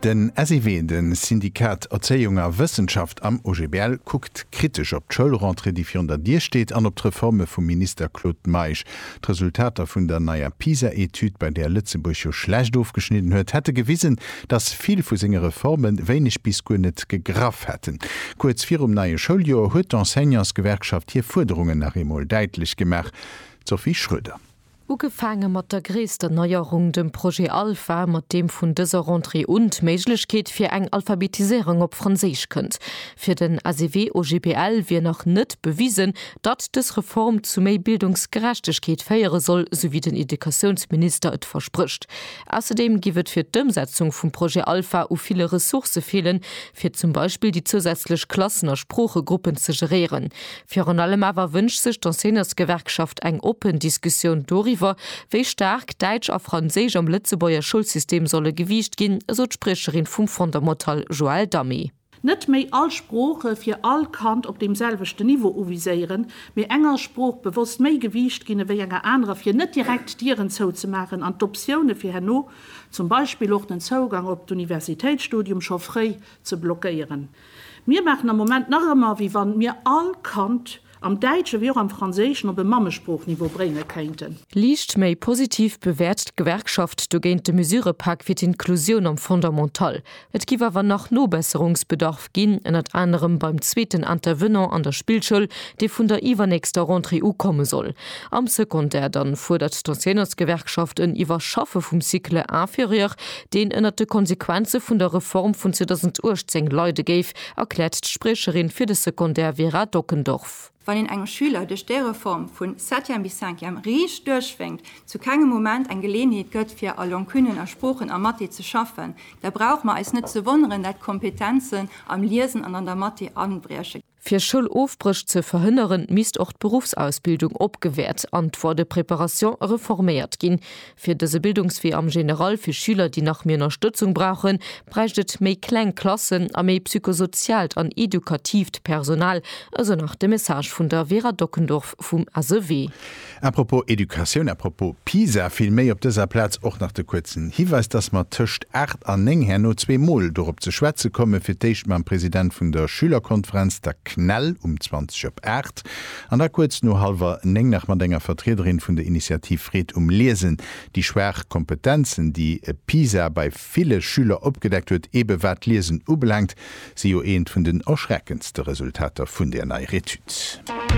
Den SEW, de Syndikat Erzéiung a Wëssenschaft am OGBL, kuckt kritesch op d'Schoulrentrée, déi virun der Dier steet, an op d'Reforme vum Minister Claude Meisch. D'Resultater vun der neier PISA-Etüd, bei där Lëtzebuerg jo schlecht ofgeschnidden huet, hätte gewisen, datt vill vu senge Reforme wéineg bis guer net gegraff hätten. Kuerz virum neie Schouljoer huet d'Enseignantsgewerkschaft hir Fuerderungen nach eemol däitlech gemaach. D'Sophie Schroeder. Ugefaange mat der gréisster Neierung, dem Projet Alpha, mat deem vun dëser Rentrée un d'Méiglechkeet fir eng Alphabetiséierung op Franséisch kënnt. Fir den SEW-OGBL wier nach net bewisen, datt dës Reform zu méi Bildungsgerechtegkeet féiere soll, sou wéi den Educatiounsminister et versprécht. Ausserdeem giff et fir d'Ëmsetzung vum Projet Alpha u ville Ressourcë feelen, fir zum Beispill déi zousätzlech Klassen a Sproochegruppen ze geréieren. Virun allem awer wënscht sech d'Enseignantsgewerkschaft eng oppen Diskussioun doriwwer, wéi staark Däitsch a Franséisch am Lëtzebuerger Schoulsystem solle gewiicht ginn, esou d'Spriecherin vum Fondamental Joëlle Damé. Net méi all Sprooche fir all Kand op deem selwechten Niveau uviséieren, mee enger Sprooch bewosst méi Gewiicht ginn ewéi enger anerer, fir net direkt Dieren zouzemaachen an d'Optioune fir herno, zum Beispill och den Zougang op d'Universitéitsstudium, scho fréi ze blockéieren. Mir maachen am Moment nach ëmmer, wéi wann mir all Kand am Däitschen wéi och am Franséischen op e Mammesproochniveau brénge kéinten. Liicht méi positiv bewäert d'Gewerkschaft dogéint de Mesurëpak fir d'Inklusioun am Fondamental. Et géif awer nach Nobesserungsbedarf ginn, ënnert anerem beim zweeten Intervenant an der Spillschoul, dee vun der iwwernächster Rentrée u komme soll. Am Secondaire dann fuerdert d'Enseignantsgewerkschaft en Iwwerschaffe vum Cycle inférieur, deen ënnert de Konsequenze vun der Reform vun 2018 leide géif, erkläert d'Spriecherin fir de Secondaire Vera Dockendorf. Wann een engem Schüler duerch déi Reform vu Septième bis Cinquième riicht duerchwénkt, zu kengem Moment eng Geleeënheet gëtt fir a Longuenen, a Sproochen, a Mathé ze schaffen, da brauche mer eis net ze wonneren, dat d'Kompetenzen am Liesen an an der Mathé abrieche. Fir Schoulofbréch ze verhënneren, misst och d'Beruffsausbildung opgewäert an d'Voie de préparation reforméiert ginn. Fir dëse Bildungswee am General fir Schüler, déi nach méi Ënnerstëtzung brauchen, bräicht et méi kleng Klassen a méi psychosoziaalt an edukatiivt Personal, esou nach de Message vun der Vera Dockendorf vum SEW. A propos Educatioun, a propos Pisa vill méi, op dëser Plaz och nach de kuerzen Hiweis, dass mer tëscht 8 an 9 herno zwee Mol dorop ze schwätze kommen, fir d'éischt mam President vun der Schülerkonferenz, der CNEL, um 20 op 8 an da kuerz no hallwer 9 nach mat enger Vertriederin vun der Initiativ Freed um Liesen, déi schwaach Kompetenzen, déi Pisa bei ville Schüler opgedeckt huet, eebe wat d'Liesen ubelaangt, si jo eent vun den erschreckendste Resultater vun där neier Etüd.